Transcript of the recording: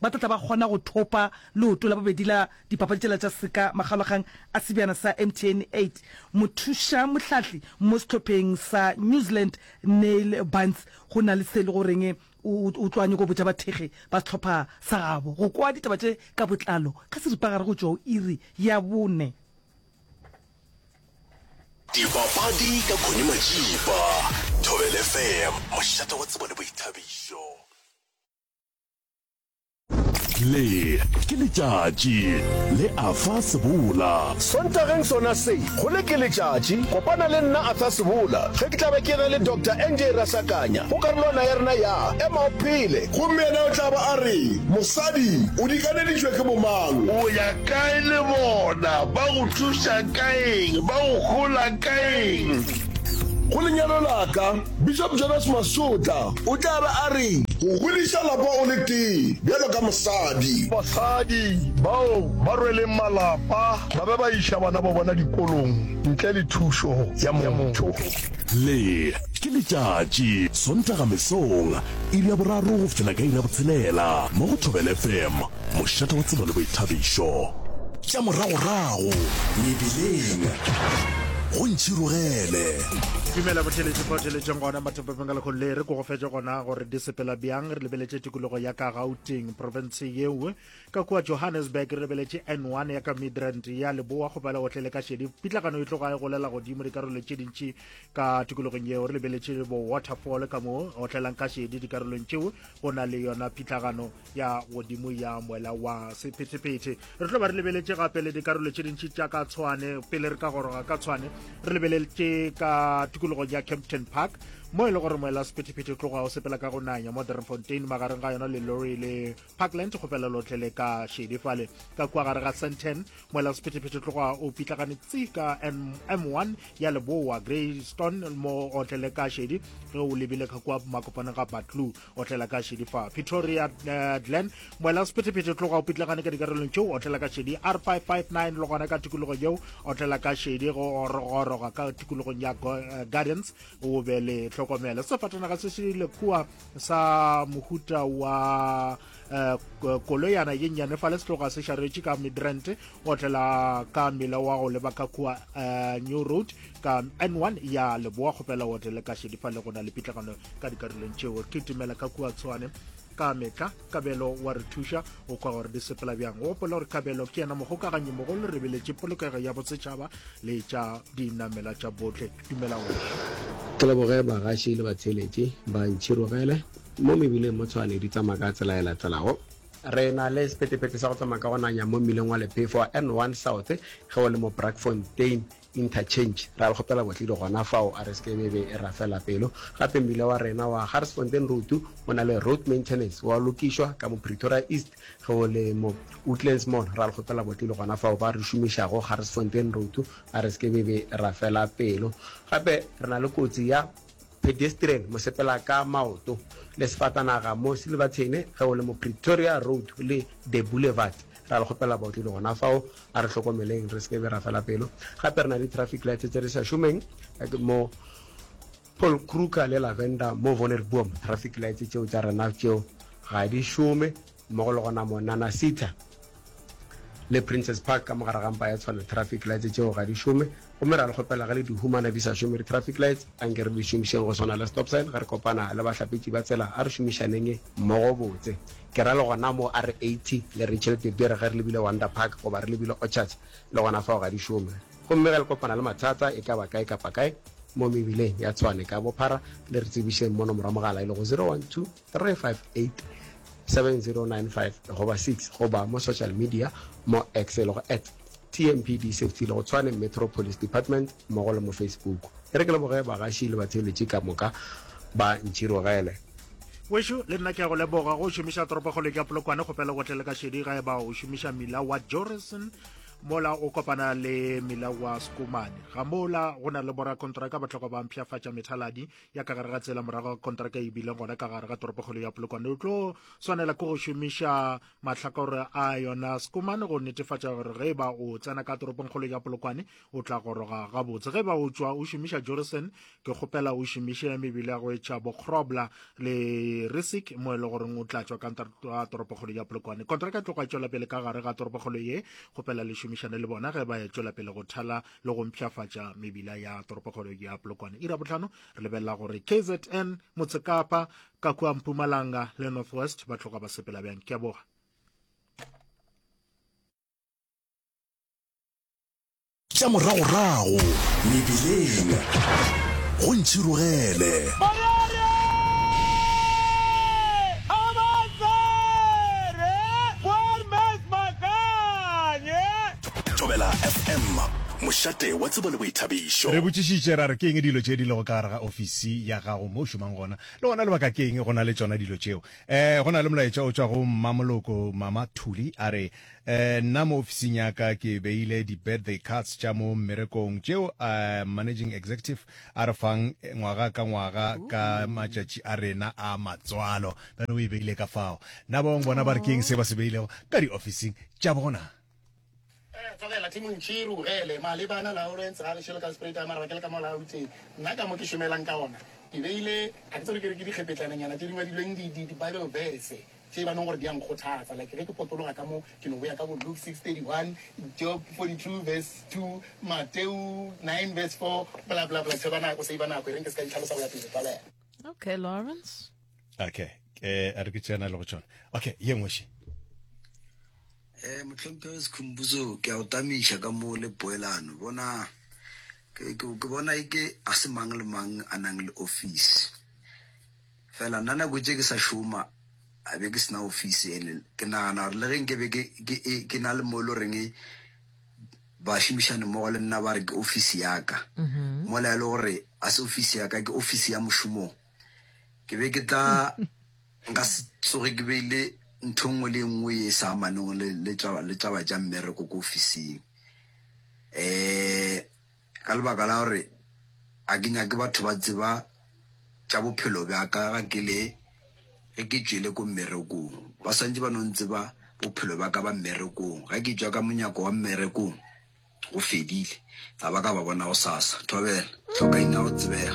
Ba tla tla ba kgona go thopa leoto la bobedi la dipapadi tšela tša seka makgalogang a sebjana sa MTN 8. Mothuša mohlahli mo sehlopheng sa New Zealand Neil Bunce go na le se le goreng o o tlo a nyoko botša bathekgi ba sehlopha sa gabo. Go kwa ditaba tše ka botlalo ka seripagare go tšwa go iri ya bone. Dipapadi ka Connie Matšipa, Thobela FM, mošate wa tsebo le boithabišo. le ke letšatši le afa sebola sontageng sona se go le ke letšatši kopana le nna afa sebola ge ke tlabe ke na le dr nj rasakanya go karolwana ya rena ya ema o phele gomme yena o tlaba a re mosadi o dikaneditšwe ke bomang o ya kae le bona ba go thuša kaeng ba go hola kaeng go lenyalo laka Bishop Jonas Masotla o tla be a re. Go godiša lapa o le tee bjalo ka mosadi. Basadi bao ba rweleng malapa ba be ba iša bana ba bona dikolong ntle le thušo ya motho. Le ke letšatši, Sontaga mesong, iri ya boraro go fihlela ka iri ya botshelela, mo go Thobela FM, mošate wa tsebo le boithabišo. Tša moragorago mebileng go ntšhirogele. tumela botheletše fa theletšeng gona mathopepeng ka lekgolo le re ko go fetša gona gore di sepela bjang re lebeletše tikologo ya ka gauteng profense yeo ka kua johannesburg re lebeletše n one ya ka midrand ya leboa go pela gotlhe le ka šedi pitlagano e tloga e golela godimo dikarolo tše dintši ka tikologong yeo re lebeletše bo waterfall ka mo otlelang ka šedi dikarolong tšeo go na le yona phitlagano ya godimo ya moela wa sephetephete re tlo ba re lebeletše gape le dikarolo tše dintši tša ka tshwane pele re ka goroga ka tshwane re lebeletše ka tikologong ya campton park mo e le gore moela sephetephete tloga o sepela ka go nanya mo drenfontein magareng ga yona le lorry le parkland go fela lotlhe le ka shedi fale ka kua gare ga santen moela sephetephete tloga o pitlagane tsi ka m1 ya leboa greystone mo otle le ka shedi ge o lebile ka kua makopaneng ga batlu otlela ka šedi fa pretoria uh, glen moela sephethephethe tloga o pitlagane ka dikarolong tšeo otlela ka šedi r 559 le gona ka tikologo yeo otlela ka šedi go orogoroga ka tikologong ya eh, gardens o be le tlhokomele sefatanaga se se le kua sa mohuta wa uh, koloyana ye nnyane fa le setloga se šaretše ka midrant otlela ka mela wa go leba ka kua uh, new road ka n1 ya leboa kgopela otlele ka šedi fa le gona le pitlagano ka dikarolong tšeo ke timela ka kua tshwane ka metla kabelo wa re thuša o kwa gore di sepela bjang o gopola gore kabelo ke yena mogokaganyi mogolo re beletše polokego ya bosetšhaba le tša dinamela tša botlhe dumelago ke leboge bagaši le batheletši ba ntšhirogele Mo mebileng mo Tshwane di tsamaya ka tsela e latelago. Re na le sephethephethe sa go tsamaya ka go nanya mo mmileng wa Lephefo wa N one South ge o le mo Braakfontein Interchange. Re a le kgopela botledi gona fao a re se ke be be e rafela pelo. Gape mmile wa rena wa Garsfontein Road o na le road maintenance wa lokišwa ka mo Pretoria East ge o le mo Woodlands Mall. Re a le kgopela botledi gona fao ba re šomišago Garsfontein Road a re se ke be be e rafela pelo. Gape re na le kotsi ya. Pedestrian, mosepela ka maoto, le sefatanaga mo Silverton ge o le mo Pretoria Road le De Boulevard. Ra le kgopela baotledi gona fao, a re hlokomeleng re se ke be ra fela pelo. Gape re na le di-traffic lights tse di sa šomeng mo Paul Kruger le Lavender mo Wonnersboom. Traffic lights tšeo tša rena tšeo ga di šome. mmogo le gona mo Nanasitha le Princes Park ka mo gare ga mpa ya tshwano traffic lights tšeo ga di šome gomme ra le kgopela ge le di humana di sa šome di traffic lights anke re di šomišeng go swana le stop sign ge re kopana le bahlapetši ba tsela a re šomišaneng mmogo botse ke ra le gona mo R80 le Rachel De Beer ge re lebile Wonder Park goba re lebile Orchards le gona fao ga di šome gomme ge le kopana le mathata e ka ba kae kapa kae mo mebileng ya Tshwane ka bophara le re tsebišeng mono morwa mogala e lego 012 3587095 goba 6 goba mo social media mo x e lego at tmpd safety le go tshwane metro police department mmogo le mo facebook e re ke leboge bagaši le batheoletši ka moka ba ntšhirogele Wešo, le nna ke a go leboga go šomiša toropokgoleng ya Polokwane kgopela go tlele ka šedi ga eba o šomiša mila wa Jorison mola o kopana le mila wa Skumane. Ga mola go na le borakontraka ba tlhoka ba mpshafatša methaladi ya ka gare ga tsela morago ga kontraka e bileng gona ka gare ga toropokgolo ya polokwane o tlo swanela ke go šomiša mahlakore a yona sekomane go netefatša gore ge ba o tsena ka toropongkgolo ya polokwane o tla goroga gabotse ge ba o tswa o šomiša jorison ke kgopela o šomiše mebele ya go etšha bokgrobla le risic mo e le goreng o tla tswa ka toropokgolo ya polokwane kontraka e tloga e tswela pele ka gare ga toropokgolo ye kgopela le šomišane le bona ge ba e tswela pele go thala le go mpšhafatša mebila ya toropokgolo ya polokwane ira botlhano re lebelela gore kzn motsekapa ka kua mpumalanga le northwest ba tloga ba sepela bjang ke a boga tša moragorago mebileng go ntšhirogele Thobela FM, mošate wa tsebo le boithabišo. Re botšišitše ra re, Ke eng dilo tše di lego ka gare ga ofisi ya gago mo o šomang gona, le gona lebaka ke eng go na le tšona dilo tšeo? Um Go na le molaetša o tšwa go Mmamoloko Mama Thuli a re, um Nna mo ofising ya ka ke beile di-birthday cards tša mo mmerekong tšeo um Managing Executive a re fang ngwaga ka ngwaga ka matšatši a rena a matswalo. Bjale o e beile ka fao. Na ba bangwe bona ba re, Ke eng se ba se beilego ka diofising tša bona? Tlogela Timo Ntšhi re bogele malebana Lawrence ga gešo le ka sepreta mara ke le ka mo la ruteng nna ka mo ke šomelang ka ona ke beile ga ke tsebe ke re ke dikgepetlananyana tše di ngwadilweng di di Bible verse tše ba nong gore di a nkgothatsa like ge ke potologa ka mo ke no boya ka bo Luke 6:31 Job 42 verse 2 Mateu 9 verse 4 bla bla bla tsheba nako save nako e reng ke se ka di tlhalosa go ya pele tlogela Okay, Lawrence. okay eh a re ke tsena le go tsona okay ye nngwe she eh motlhomphe wa sekhumbuzo ke a o tamiša ka mo le poelano bona ke bona e ke a se mang le mang a nang le office fela nna nako tse ke sa šoma a be ke sena office ele ke nagana gore le reng ke be ke na le mo e le goreng ba šomišane mmogo le nna ba re ke office yaka mm-hmm. mola e le gore a se office yaka ke office ya mošomong Ke be ke tla nka se tsoge ke beile ntho e nngwe le e nngwe e sa amaneng le, le, taba, le taba tša mmereko ko ofising um ka lebaka la gore ga ke nyake batho ba tseba tša bophelo bja ka ga ke le ge ke tšwele ko mmerekong ba swantse ba no ntseba bophelo bja ka ba mmerekong ga ke tšwa ka monyako wa mmerekong go fedile ga ba ka ba bona go sasa thobela tlhokaina go tsebega